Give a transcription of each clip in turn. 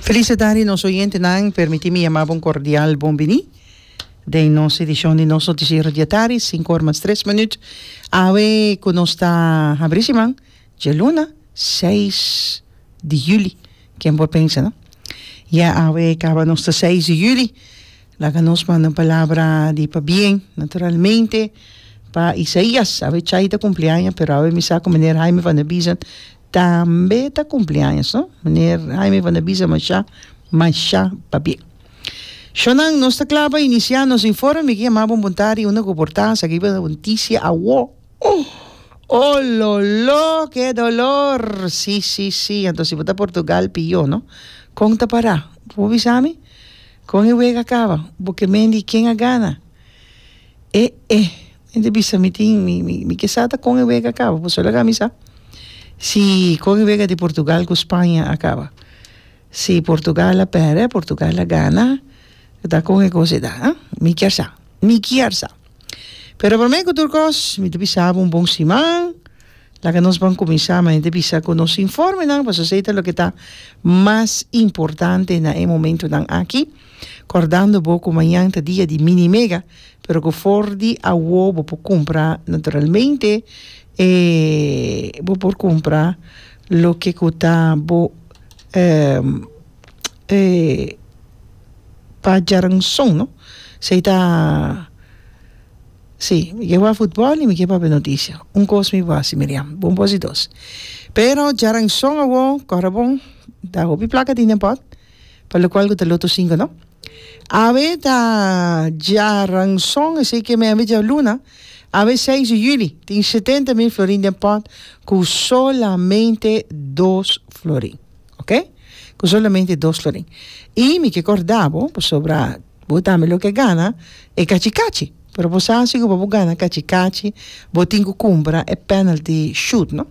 Feliz atadi nos oyentenan, permiti mi yama bo un kordial bon bini den nos edishon di nos notisiero di atadi, sinku or mas tres minüt. Awe ku nos ta habri siman, djaluna seis di yüli, ken por pensa no? Ya awe kaba nos ta seis di yüli, Laga nos manda un palabra di pabien, naturalmente, pa Isaías. Awe Chay ta cumpleaños, pero awe mi sa cu meneer Haime van der Biesen tambe ta cumpleaños, no? Meneer Haime van der Biesen masha, masha pabien. Shonan, nos ta cla pa inicia nos informe. Mi yama bo un buntadi, unda cu por ta? Sa kiba noticia awo? Oh! Ololo! Ke dolor! Si, si, si. Anto si bo ta Portugal, pior, no? Con ta para? Bo bisa mi? Kon e wega kaba? Bo ke mendi ken a gana? E e mi ta bisa mi tin mi mi mi ke sa ta kon e wega kaba pasobra laga mi sa si kon e wega di Portugal ku Spaña a kaba si Portugal a pèrdè Portugal a gana ta kon e kos e ta a mi kier sa mi kier sa. Pero prome ku tur kos mi ta bisa bo un bon siman laga nos ban kuminsá mi ta bisa ku nos informenan pasobra esei ta loke ta mas importante na e momentunan aki kòrdando bo ku mañan ta dia di mini mega pero ku for di awo bo por kumpra naturalmente e bo por kumpra loke ku ta bo. eh, pa djaranson no, s'ei ta, si, mi ke wak futbòl i mi ke papia noticia, un kos mi wak si Miriam, bon bosi dos, pero djaranson awor kòrda bon ta hopi plaka tin den pòt pa lokual ku ta loto sinku no, awe ta djaranson esei ke mi a wik djabluna, awe seis di juli tin setenta mil florin den pòt ku solamente dos florin. Ok, cu solamente dos lo den. Y mi ke corda bo, pasobra bo tambe lo ke gana e cachi cachi. Pero bo sa si cu pa bo gana cachi cachi bo tin cu cumpra e penalty shoot no.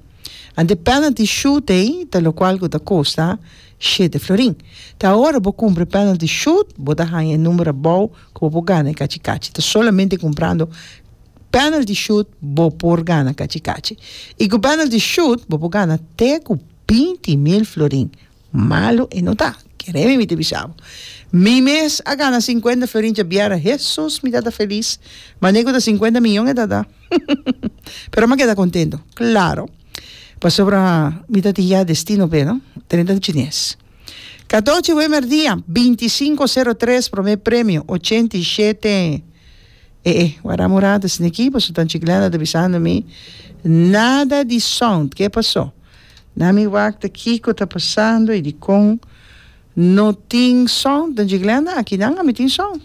Anto e penalty shoot ey ta locual cu ta costa shete florin. Ta ora bo cumpra e penalty shoot bo ta hanja e number abao cu bo por gana e cachi cachi. Ta solamente cumprando penalty shoot bo por gana cachi cachi. Y cu penalty shoot bo por gana te cu Binti mil florin malu e no ta, kere mi mi ta bisa bo. Mi mes a gana sinkuenta florin djabiera, hesus mi ta ta felis, ma ne ku ta sinkuenta miyon e ta ta, pero mi a keda kontento, klaro, pasobra mi ta tin ya destino p'e no, trenta di chines. Katochi wemer dia, binti sinku sero tres prome premio, ochenta i shete e e wara murada esneki, pasobra Tanchi Glenda ta bisando mi, nada di sound, ke pasó? Na mi wakta kiko ta pasando y dikon no tin son den Dje Glenda? Aki nan a mi tin son.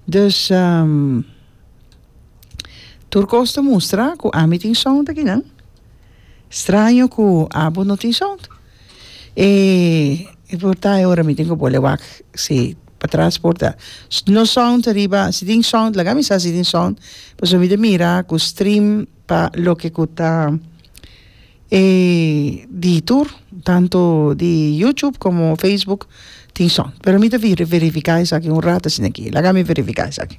Dus tur kos ta mustra ku ami tin son aki nan. Straño ku abo no tin son. E porta e ora mi tin ku bo le wak si patras por ta no son ariba, si tin son laga mi sa si tin son pasobra mi ta mira ku stream pa loke ku ta e di tur tantu di YouTube komo Facebook tin son pero mi ta verifiká esaki un rato asina aki laga mi verifiká esaki.